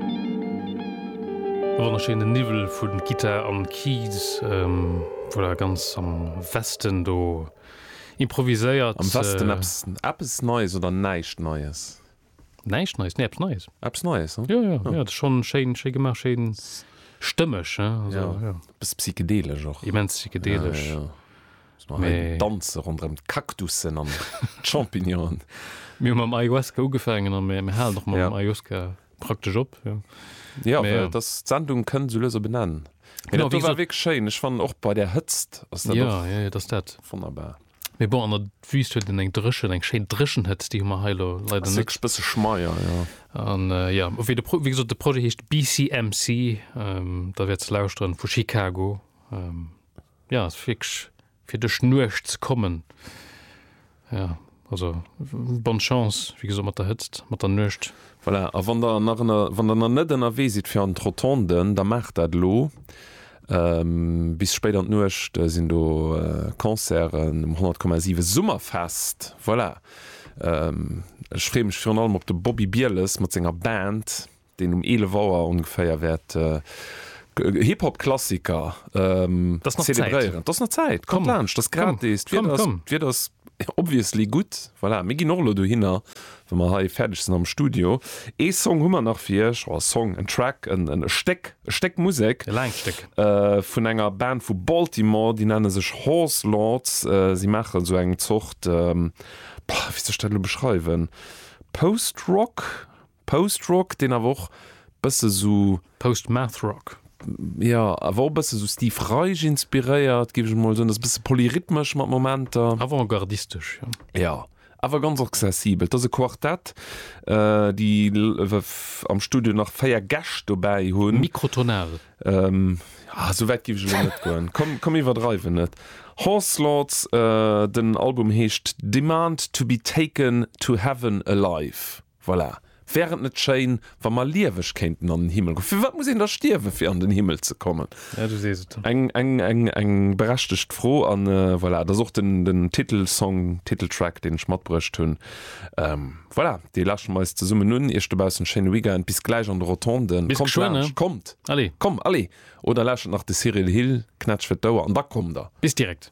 E wonnerschéinen Niwwel vu Gittar an Keys, voilà, ganz am Westen do improviséiert. Am Westen eppes, eppes Neies oder näischt Neies? Näischt Neies, nee, eppes Neies. Eppes Neies, hm? Jo, jo, jo, schon schéin, schéi gemaach, schéin stëmmeg, he, also, jo. Bëss psychedelesch och. Immens psychedelesch. Ja, ja, jo. Mä. Hei danze ronderëm d'Cactussen an d'Champignonen. Mir hu mam Ayahuasca ugefaangen a mir halen och mam Ayahuasca. praktesch op ja das Sendung können so löser benennen genau wie weg schön ich fand auch bei der Hëtzt ja, ja, das dat wunderbar mir bon an der wüst hue den eng dreschen eng Schein dreschen hëtzt die immer heilo leider net bis schmeier ja an äh, ja wie de wie gesagt, de projet hecht BCMC ähm, da werd ze lausren vu Chicago ähm, ja fix fir duerch Nuecht ze kommen, jo also bonne chance wéi gesot mat der Hëtzt, mat der Nuecht. Voilà, a wann Der nach ënner, wann Der nach net ënnerwee sidd fir an d'Rotonden, da maacht dat elo. Bis spéit an d'Nuecht sinn do Concerten um 100,7 Summerfest, voilà. Ech freeë mech virun allem op de Bobby Bieles mat senger Band. deen um 11 Auer ongeféier wäert Hip-Hop-Klassiker zelebréieren. Et ass nach Zäit, kommt laanscht, et ass gratis, d'Wieder ass obviously gutt. Voilà, mir ginn och elo dohinner, wa mer hei fäerdeg sinn am Studio. Ee Song hu mer nach fir Iech, oder e Song, en Track, e Stéck, e Stéck Musek vun enger Band vu Baltimore, déi nenne sech Horse Lords. Si maachen esou eng Zort, wéi soll ech dat elo beschreiwen, Post-Rock, Post Rock, deen awer och bësse sou. Post Math Rock. Jo, awer och bësse sou Steve Reich inspiréiert, géif ech mol soen. Ass bësse polyrhythmesch mat Momenter. Avantgardistesch, jo. Jo, awer ganz accessibel. 't ass e Quartett, déi am Studio nach 4 Gäscht dobäi hunn. Mikrotonal. Ah, sou wäit géif ech elo net goen. Komm, komm iwwerdreiwen net. Horse Lords, den Album heescht Demand to be taken to heaven alive. Voilà. Wär et net schéin, wa mer lieweg kéinten an den Himmel goen? Firwat muss een da stierwen, fir an den Himmel ze kommen? Ja, du sees et. Eng berechtegt Fro. A voilà, et ass och den Titelsong, Titeltrack, deen ech matbruecht hunn. Voilà, dee lauschteren mer eis zesummen un. Iech dobaussen en schéine Weekend. Bis gläich an de Rotonden. Bis geschwënn, ne? Kommt laanscht. Kommt. Allez. Oder lauschtert nach de Cyril Hill, Knätsch fir d'Ouer, an da kommt der. Bis direkt.